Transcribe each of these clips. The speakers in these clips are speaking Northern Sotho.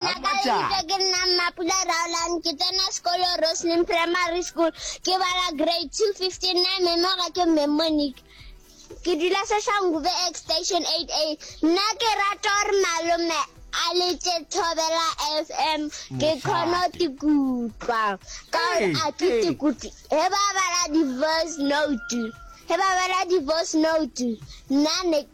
Nna ka lebitso ke nna Mmapula Raolan, ke tsena sekolo Roslyn Primary School, ke bala grade two fifteen nine, mme mo ga ke mme Monique. Ke dula Soshanguve X station eight A. Nna ke rata gore malome a letse Thobela FM, ke kgone go tikutlwa. Ka gore a ke tikutlwe, he ba bala di-voice note, he ba bala di-voice note, nna ne.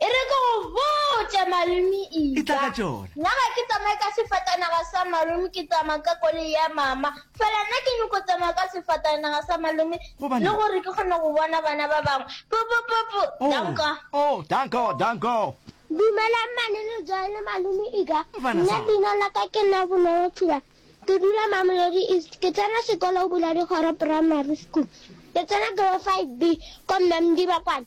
E re ke go botše malome E tla Ida, ka tšona. nna ga ke tsamaye ka sefatanaga sa malome ke tsamaya ka koloi ya mama. Fela nna ke nyoko tsamaya ka sefatanaga sa malome Gobane? le gore ke kgone go bona bana ba bangwe. Pupupupu, Oh, danko. oh, danko, danko. Dumelang mmane le Joy le malome Ida, Mfana nna sa. leina la ka ke nna Bonolo Thula. Ke dula Mamelodi East. Ke tsena sekolo Boladikgoro Primary School. Ke tsena grade 5B ko Mme Mdiba kwana.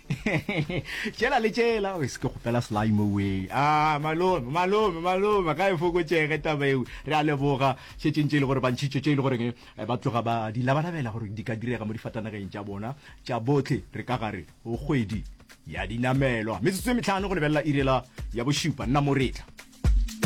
tšela le tšela o se ke kgopela sly mo we a ah, malome malome malome ga e fokotšege taba eo re a leboga šetšeng tše e le gore bantšhitšo tše e le goreng eh, ba tloga ba di labalabela gore di ka direga mo difatanageng tša bona tša botlhe re ka gare o kgwedi ya dinamelwa metsotso e metlhano go lebelela irela ya bošupa nna moretla